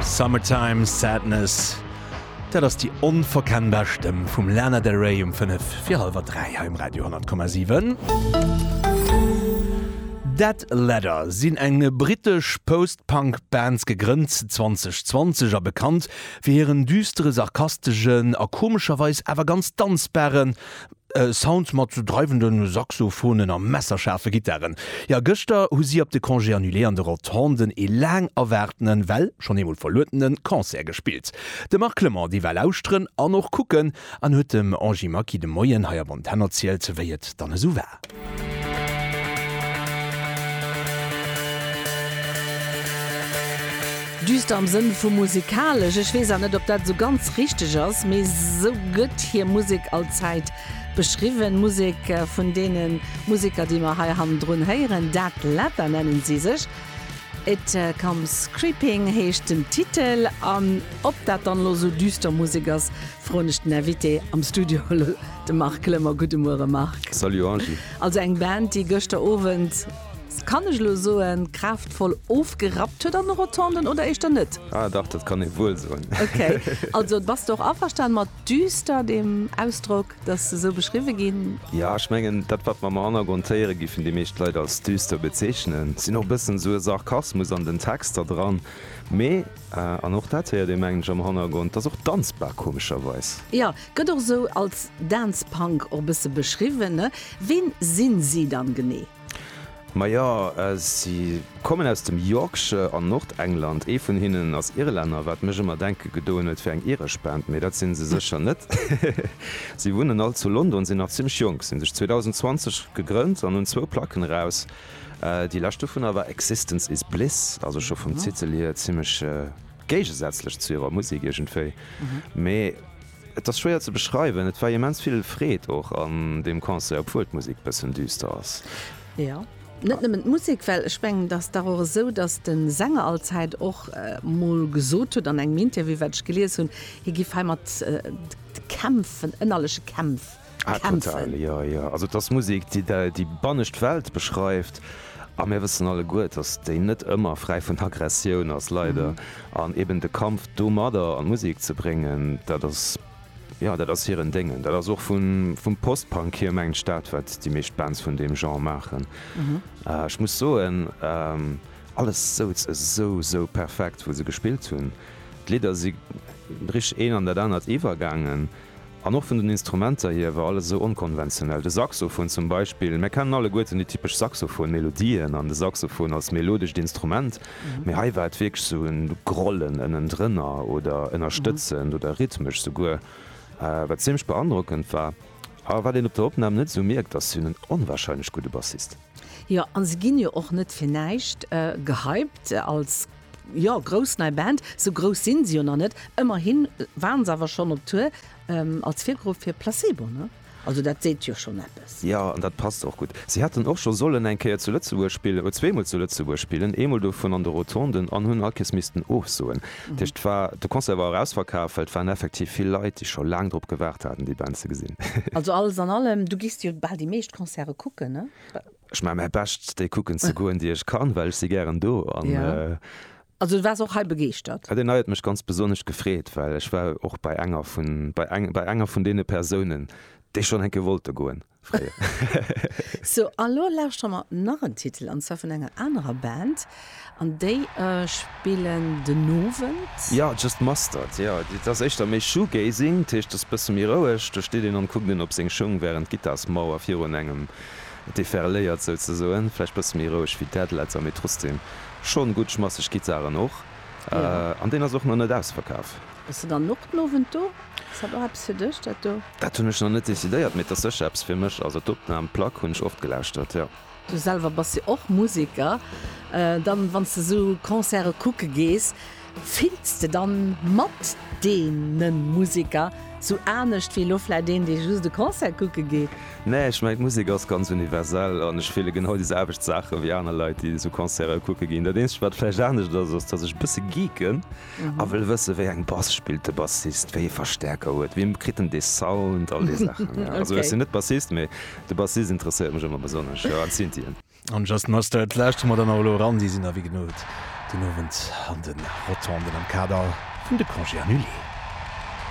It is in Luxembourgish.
Summertime Sadness, dat ass déi onverkennbar Stëmm vum Lana Del Rey um 5 fir hallwer 3 hei um Radio 100,7. Dead Letter sinn eng britesch Post-Punk Band, gegrënnt 2020 a bekannt fir hiren düstere, sarkastegen a komescherweis awer ganz danzbaren, E Sound mat sou dreiwende Saxophonen a messerschaarfe Gittaren. Jo, gëschter hu si op de Congé annulé an de Rotonden ee laang erwaartenen, well schonn eemol verluedene Concert gespillt. De Marc Clement, dee war lauschteren an och kucken an huet dem Angie Maki de Moien hei op Antenn erzielt, wéi et dann esou war. Düster am Sënn vu musikalesch. Ech weess an net op dat esou ganz richteg ass, mee esou gëtt hir Musek allzäit beschriwwen. D'Musek vun deene Museker déi mer hei hannendrun héieren, Dead Leather nennen si sech. It Comes Creeping heescht den Titel. An ob dat dann elo esou düster Musek ass, froen ech den Invité am Studio. De Marc Glemmer, Gudde Muere Marc. Salut Angie. Also eng Band déi gëschter Owend, kann ech elo soen, kraaftvoll ofgerappt huet an de Rotonden, oder éischter net? Ah dach, dat kann ee wuel soen. Ok, also bass de och averstan mat düster, deem Ausdrock, dass se sou beschriwwe ginn? Jo, ech mengen dat wat mer am Hannergrond héiere giffen déi meescht Leit als düster bezeechnen, sinn och e bëssen sou e Sarkasmus an den Texter dran, mee. An och dat héiert ee mengen ech am Hannergrond. Ass och danzbar komescherweis. Jo, gëtt och esou als Dance Punk och e bësse beschriwwen, ne? Ween sinn si dann genee? Majo, si kommen aus dem Yorkshire an Nordengland. Ee vun hinnen ass Irlänner, wat mech ëmmer denke gedoen huet fir eng iresch Band, mee dat sinn se sécher net. Si wunnen all zu London, sinn nach zimmlech jonk, sinn sech 2020 gegrënnt an hunn zwou Placken eraus. Déi lescht dovunner war Existence Is Bliss, also scho vum Titel hier zimmlech géigesätzlech zu hirer Musek iergendwéi. Mee et ass schwéier ze beschreiwen, et war immens vill Freed och an deem Concert, obwuel d'Musek e bëssen düster ass. Jo, net nëmmen d'Musek, well ech mengen, et ass dach och esou, datt de Sänger allzäit och mol gesot huet an engem Interview, wat ech gelies hunn, hie géif heimat kämpfen, ënnerleche Kämpf. Ah total, jo jo. Also et ass Musek déi déi bannescht Welt beschreift a mir wëssen alleguer, dass déi net ëmmer fräi vun Aggressioun ass, leider. An eben de Kampf domadder an Musek ze bréngen, dat ass, jo dat ass hiren Déngen. Dat ass och vu vum Post-Punk hier mengen ech dat wat déi meescht Bands vun deem Genre maachen. Ech muss soen, alles souz esou esou perfekt wou se gespillt hunn. D'Lidder si richteg een an dat anert iwwergaangen. An och vun den Instrumenter hier war alles esou onkonventionell. De Saxofon zum Beispill, mär kennen alleguerten déi typesch Saxofon-Melodien an de Saxofon als melodescht Instrument, mee hei war et wierklech esou e Grollen ënnendrënner oder ënnerstëtzend oder rhythmesch souguer, wat ziemlech beandrockend war. A wat een op der Opnam net esou mierkt, ass hien en onwahrscheinlech gudde Bassist. Jo, a se ginn jo och net fir näischt gehypt als Jo, grouss nei Band, sou grouss sinn se jo nach net, ëmmerhin waren se awer schonn op Tour als Virgrupp fir Placebo, ne? Also dat seet jo schonn eppes. Jo, an dat passt och gutt. Si hätten och scho sollen eng Kéier zu Lëtzebuerg spillen, oder zweemol zu Lëtzebuerg spillen, eemol dovun an de Rotonden, an hunn all Kees missten ofsoen. Dat heescht, war, de Concert war och ausverkaf, well et waren effektiv vill Leit, déi scho laang drop gewaart haten, déi Band ze gesinn. Also alles an allem, du gees jo bal déi meescht Concerte kucken, ne? Ech maan mäi Bescht déi kucken ze goen déi ech kann, well ech si gären do an. Also du waars och hei begeeschtert? Deen hei huet mech ganz besonnesch gefreet, well ech war och bei enger vun bei enger vun deene Persounen déi schonn enke wollte goen fréier. Sou a lo lauschteren mer nach en Titel an zwar vun enger anerer Band An déi spillen den Owend? Jo, just Mustard. Jo, et ass éischter méi Shoegazing, dat heescht et ass bësse méi roueg. Do steet een an kuckt een op seng Schung, wärend d'Gittar-Smauer virun engem deferléiert souzesoen. Vläicht bësse méi roueg wéi Deadletter, mee trotzdem schonn gutt schmasseg Gittaren och. An deen ass och nach net ausverkaf. Bass de dann och den Owend do? Ass dat och eppes fir dech, dat do? Dat hunn ech nach net decidéiert, mee et ass sécher eppes fir mech. Also d'Opnam, d'Plack hunn ech oft gelauschtert, jo. Du selwer bass jo och Museker. Dann, wann s de sou Concerte kucke gees, fills de dann mat deene Museker sou anescht wéi elo vläit een, dee just e Concert kucke geet? Nee, ech mengen, d'Musek ass ganz universell an ech fille genau déi selwecht Saache wéi aner Leit, déi sou Concerte kucke ginn. Dat eenzegt, wat vläicht anescht ass, ass, datt ech e bësse geeken. A wëll wësse wéi eng Bass spillt de Bassist, wéi ee Verstäerker huet, wéi kritt en dee Sound, all déi Saachen. Also ech sinn net Bassist, mee de Bassist interesséiert mech ëmmer besonnesch, jo, an d'Synthien. An Just Mustard lauschtere mer dann och elo eran, déi sinn da wéi genot den Owend an de Rotonden am Kader vun de Congés Annulés.